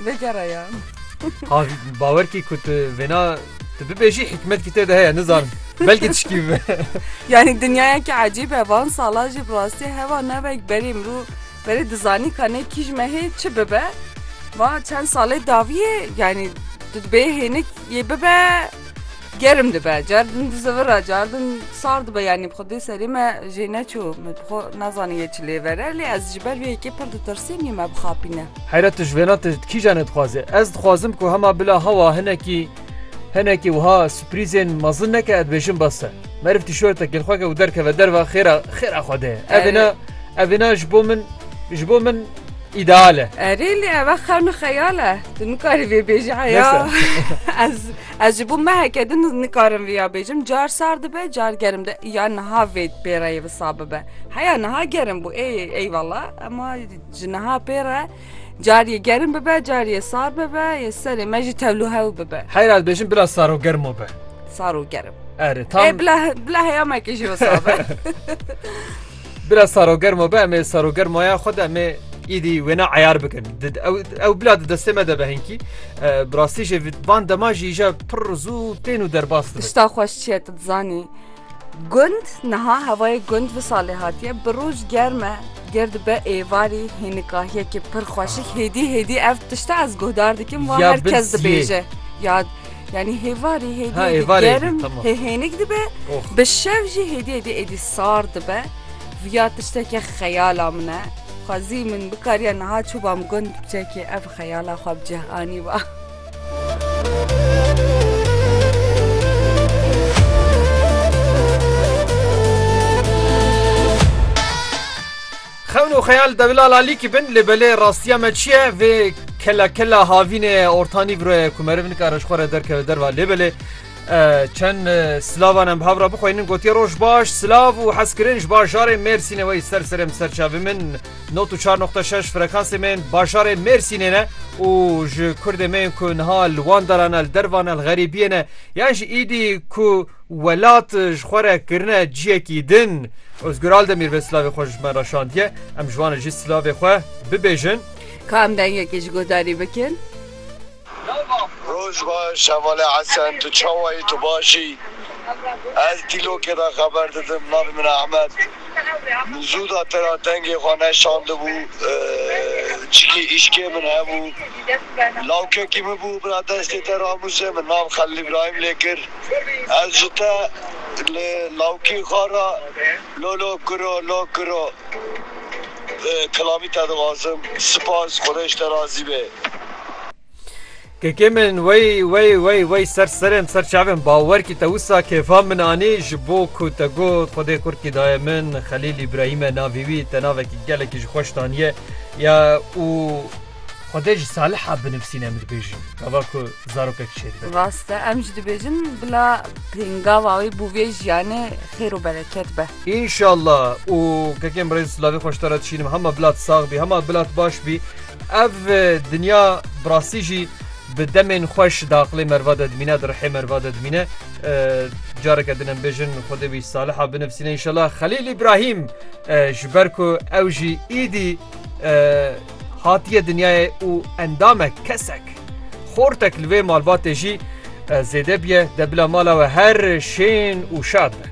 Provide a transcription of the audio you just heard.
Vegeraya. Ha bawer kî ku tu vêna tu bibêjî hikmetkî tê de heye nizanim. Belkî tişkî bibe. Yanî dinyayekî ecîb e van sala jî bi rastî heva nevek berê mirov berê dizanî ka nê kîj me hê çi bibe. Va çend salê dawiyê yanî tu dibê hênik yê bibe Germ dibe, car din dizivir e, car din sar dibe yanî bi xwe dê serê me jê neçû. Min xwe nazanin yê çi lê vere lê ez ji ber vê yekê pir ditirsîm nî me bixapîne. Heyret tu ji vêna ti kîjan e dixwaze? Ez dixwazim ku hema bila hewa hinekî hinekî wiha sürprîzên mezin neke ez dibêjim bes e. Meriv tîşorte kêlxweke û derkeve derve xêra xêra xwe de ye. Ev êna ev êna ji bo min ji bo min îdeal e. Erê lê ev xewna xeyal e. Tu nikarî vê bêjî heya ez Ez ji bo meheke din nikarim vê ya bêjim car sar dibe car gerim de ya niha vê pêreyê visa bibe. Heya niha gerim bû ê eyvalla ema ji niha pêre cariyê gerim bibe cariyê sar bibe yê serê me jî tevlu hew bibe. Heyra dibêjin bila sar û germo be. Sar û gerim. Erê tam. Ê bila bila heya me kê jî wisa be. Bila sarogermo be em ê sarogermaya xwe de em ê îdî wêne eyar bikin. Ew bila di destê me de be hinkî. Bi rastî jî van dema jî îja pir zû tên û derbas dibin. Tişta xweş çi ye tu dizanî. Gund niha hewayê gund bi salê hatiye bi roj germ e ger dibe êvarî hênikahiyekî pir xweşik hêdî hêdî ev tişta ez guhdar dikim wa her kes dibêje ya Yani hêvarî hêdiyê dî gerim hê hênik dibe bi şev jî hêdiyê dî êdî sar dibe ya tiştekê xeyala min e xwezî min bikariya niha çûba min gund biçekê ev xeyala xwe bi cih anî ba. Xewn û xeyal dewila lalîkî bin lê belê rastiya me çi ye vê kela kela havînê ye ortanî viro ye ku meriv nikare ji xwe re derkeve derva lê belê çend silavan em bi hev re bixweynin gotiye roj baş silav û hezkirin ji bajarê mêrsînê wey ser serê em serçavê min not û çar noqta şeş frekansê me yên bajarê mêrsînê ne û ji kurdê me yên ku niha li wan daran e li dervan e li xerîbiyê ne yan jî îdî ku Welat ji xwe re kirine ciyekî din. Ozgur Aldemîr vê silavê xwe ji me re şandiye. Em ji wan re jî silavê xwe bibêjin. Ka em dengekê ji guhdarî bikin. Roj baş hevalê Hesen tu çawa yî tu baş î ez dîlokê de xeber didim navê min Ehmed min zû da te ra dengê xwe neşandibû çikî îşkê min hebû lawkekî min bû bira destê te ramûzê min nav Xelil Îbrahîm lê kir. Ez ji te li lawkî xwe re lo lo kiro lo kiro kilamî te dixwazim. Sipas Xwedê ji te razî be. Kekê min wey wey wey wey ser serên ser çavên bawer kî te wisa kêfa min anî ji bo ku te got Xwedê kurd kî daye min Xelîl Îbrahîm e navê wî te navekî gelekî ji xweş daniye ya û Xwedê ji Saliha binivîsîn em dibêjin gava ku zarokek çê dibe. Rast e em jî dibêjin bila pêngava wê bo vê jiyanê xêr û bereket be. Înşallah û kekê min rêz lavê xweş te re dişînim hema bila tu sax bî hema bila tu baş bî. Ev dinya bi rastî jî bi demên xweş di aqilê merva de dimîne di rihê merva de dimîne. Careke din em bêjin Xwedê wî Saliha binivîsîne înşallah Xelîl Îbrahîm ji ber ku ew jî îdî Hatiye dinyayê û endamek, kesek, xortek li vê malbatê jî zêde bûye, de bila mala we her şên û şad be.